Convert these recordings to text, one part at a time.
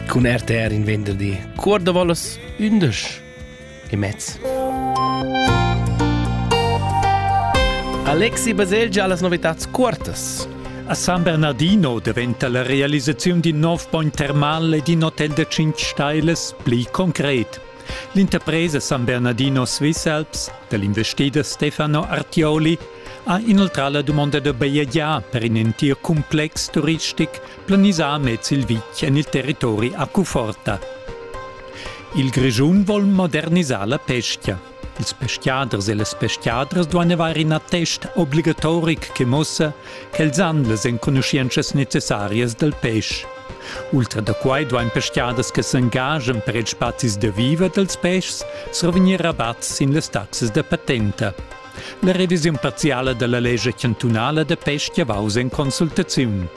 Cun RTR in venderdi cuor da volas undisch e mezz. Alexi Baselgia las novitats cuortas. A San Bernardino daventa la realisaziun d'in nov bogn termal ed in hotel da 5 stailas pli concret. L'interpresa San Bernardino Swisselps dell'investider Stefano Artioli ha inoltrà la dumonda da bajegiar per in entir complex turistic planisà mez il vitg en il territori a Cuforta. Il Grischun vuol modernisar la pesca. Ils peschiaders e las peschiadras duein avair in attest obligatoric che muossa quels han las enconuschientschas necessarias dal pesch. Ultra da quai duain pestgaders che s'engajan per ils spazis da viver dals peschs survegnir rabatt sin las taxas da patenta. La revisiun parziala da la lescha chantunala da pestga vaus en consultaziun.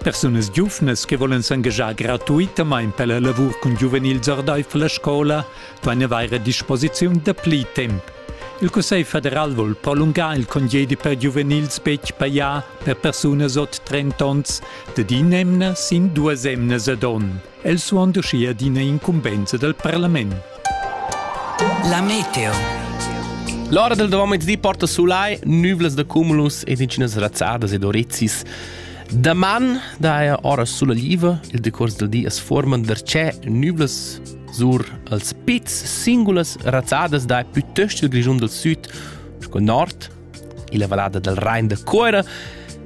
Persunas giuvnas che volen s'engagiar gratuitamain per la lavur cun giuvenils ordaifer la scola duain avair a disposiziun da pli temp Il Cussegl federal vul prolungar il congedi per giuvenils betg pajà per persunas ot 30 onns dad in'emna sin duas emnas ad onn. El suond uschia d'ina incumbensa dal parlament. La meteo. L'ora del domezzì porta sulai nüvlas da cumulus ed incinas razzadas ed orezis. Daman daja ora sulla liva, il decors del di as forman darchè nüvlas Sur als pizs singulas razzadas dai plütöst il Grischun dal Süd sco nord. Illa vallada dal Rain da Cuera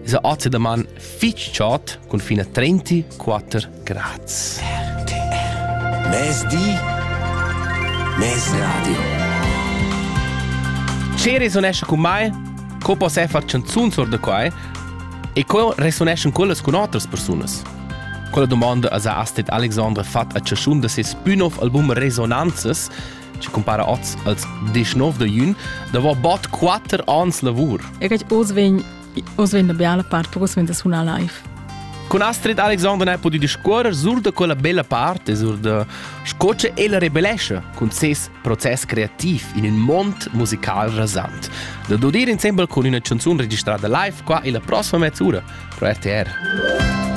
esa ozedaman fich chod cun fin a 34 grads. RTR Mezdi Mezradio Ce resonesce con mai? Co poss far chanzuns or da quai? E co resoneschan quellas cun otras persunas? Quella domanda ha Astrid Alexandre fatg a chaschun da ses pü nov album Resonanzas, che compara oz als 19 de jun, davo bod 4 ans lavur. E che oz vegn oz vegn la bella part, perché vegn da sunar live. Con Astrid Alexander hai podido discuorrer sur da quella bella parte, sur da sco che ella rebellesce con ses proces creativ in un mond musical rasant. Da dodir insembel con una canzone registrata live qua e la prossima mezz'ora pro RTR.